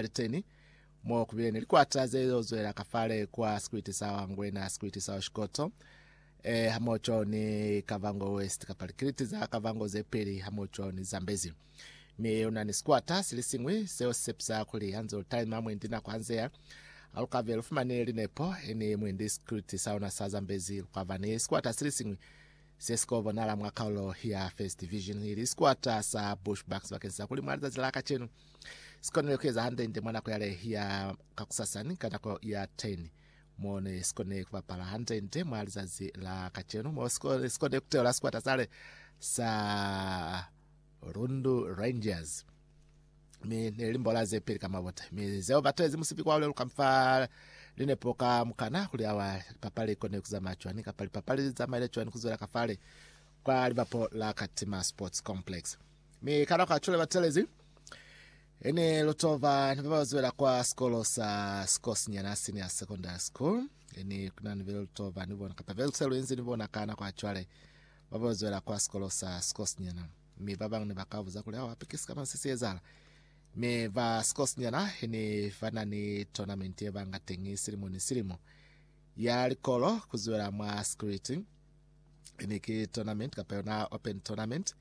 Aliteni, mo kubile ni likwata ze lil'o zwela ka fale kwa sikwiti sa Wangwena, sikwiti sa Oshikoto, e, hamoco ni Kavango West, kapa likiliti za Kavango ze peli, hamoco ni Zambezi. Mi una ni sikwata sili siñwi seo si sepisa kuli hanze lu talima mwendi nako hanzea, ha lu ka be lu fumani linepo, ni mwendi sikwiti sa ona sa Zambezi, lu ka ba ni sikwata sili siñwi se si ko bonala mwa kaulo ya First Division, ili sikwata sa Bushbucks, bakeni sa kuli mwa lizazi la kacenu, Si konile ku eza hande-nde mwa nako yale ya kakusasa ni ka nako ya 10 mo ne si kone ku bapala hande-nde mwa lizazi la kacenu, mo si kone, si kone ku teula sikwata sale sa Rundu Rangers mi ne li mbola ze peli ka mabota mi zeo batezi musipi kwa uleluka fa linepo ka mukana kuli awa lipapali ikone kuzamaya cwani kapa lipapali lizamaile cwani kuzwela kafale kwa libapo la Katima Sports Complex. Mi ka nako ya cwale batelezi ene lutova ni baba zwela kwa sikolo sa sikosinyana senior secondary school ene kuna ni bele lutova ni bona kapa velse luenzi ni bona ka nako ya cwale baba zwela kwa sikolo sa sikosinyana mi ba bang ne ba ka buza kuli awa pikisi kama se siezala me ba sikosinyana ene ba na ni tournament e banga tengi silimo ni silimo ya likolo kuzwela mwa security Ene ki tournament kapa yona open tournament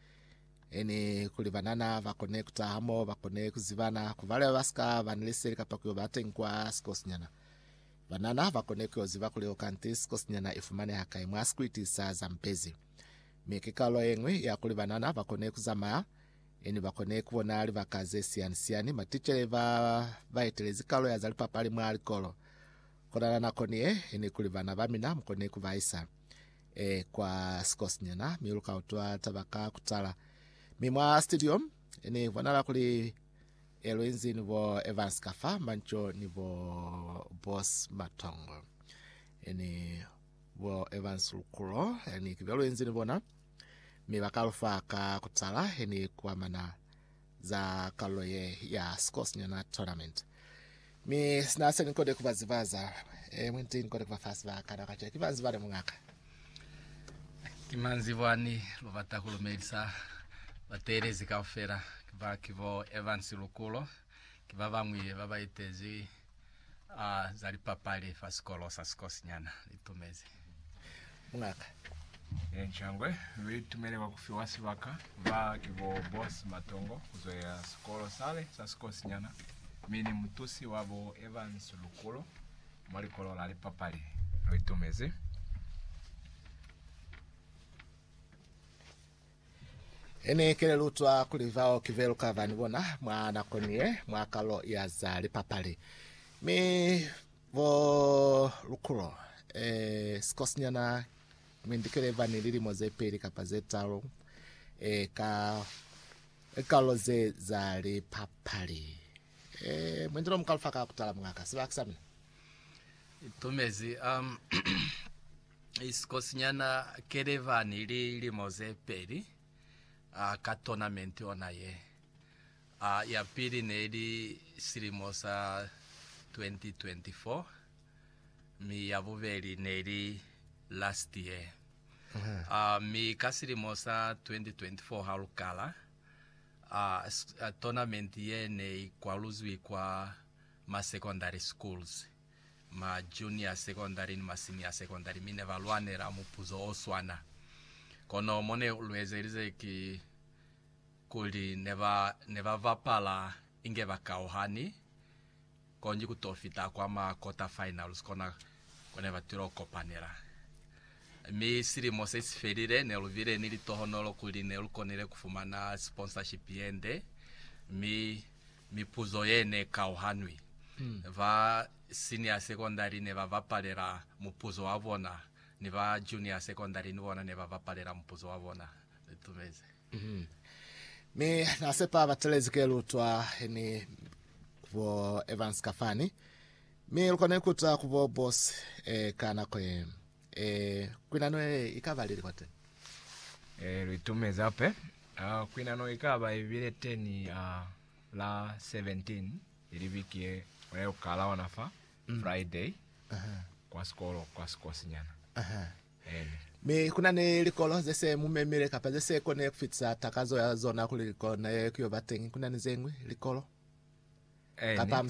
ene kuli banana ba kone kuta hamo ba kone kuzibana kuvale ba sika bani leseli kapa kuyo bateng kwa sikosinyana banana ba kone kuyo ziba kuli okanti sikosinyana ifumaneha kai mwa sikwiti sa zampezi me ke kalo engwe ya kuli banana ba kone kuzamaya ene ba kone kubona libaka ze siyani siyani matitshele ba ba etelezi kalo ya za lipapali mwa likolo Konana nako ni ye, ni kuli bana ba mina mukone ku ba isa e, kwa sikosinyana, mi lu ka utwa taba ka kutala. Mi mwa studio, ni bonala kuli e, lu inzi ni bo Evans ka fa, Manco ni bo Boss Matongo. E, ni bo Evans Lukulo, e, ni kibyo lu inzi ni bona, mi ba ka lu fa ka kutala, e, ni kuamana za kalulo ye ya Sikosynyana Tournament. Mi sina se ni kode ku ba zibaza, e mwi nti ni kode ku ba fa sibaka. Na kaca ki banzi bale mungaka. Ki manzi bwani lu bata ku lumelisa bateelezi kaufela, ki ba ki bo Evans Lukulo, ki ba bañwi ba ba itezi a za lipapali fa sikolo sa sikosinyana li tumezi mungaka Nchangwe. Lu itumele kwa ku fiwa sibaka ba ki bo Boss Matongo ku zwelela sikolo sale sa sikosinyana mi ni mutusi wa bo Evans Lukulo mwa likolo la lipapali. Lu itumezi. Ini kelelutwa kuli bao ki velu ka vani bona mwa nako niye mwa kalulo ya za lipapali. Mi bo lukulo, e, sikosinyana Mindikele ba ni lilimo ze peli kapa ze talu, e, ka likalulo ze za lipapali. E, mwendi lo muka lufa ka kutala, mungaka. Siba ki sa mina. Itumezi, um. Sikosinyana Keleva ni lilimo ze peli ka tournament ona ye. Ya pili neli silimo sa 2024 mi ya bubeli neli last year. Mi ka silimo sa 2024 ha lu kala, tournament ye ne i kwaluzwi kwa ma secondary schools. ma junior secondary ni ma senior secondary mi ne ba lwanela mupuzo o swana. Kono mo ne lu ezelize ki kuli ne ba ne ba bapala inge ba kauhani, konji ku to fita kwa ma quarter finals kona ko ne ba tilo kopanela. Mi silimo se si felile, ne lu bile ni litohonolo kuli ne lu konile ku fumana sponsorship ye nde, mi Mipuzo ye ne kauhanwi. Ba senior secondary ne ba bapalela mupuzo wa bona, ni ba junior secondary ni bona ne ba bapalela mupuzo wa bona. Tumeze. Mi na sepa ba telezi ke lutwa ni bo Evans ka fani, mi lu kona ikuta ku bo boss e ka nako ye. Ee, kwinano ye i ka ba lili kwateni? Ee, lu itumezi hape. A Kwinano i ka ba i bile teni a la 17, ili biki ye, ona ye ku kala ona fa, Friday, kwa sikolo, kwa sikosinyana. Aha. Ene. Mi ku na ni likolo ze se mu memile kapa ze se kone ku fitisa takazo ya zona kuli likolo na ye ku yo ba teñi. Ku na ni ze ñwi likolo Ene. kapa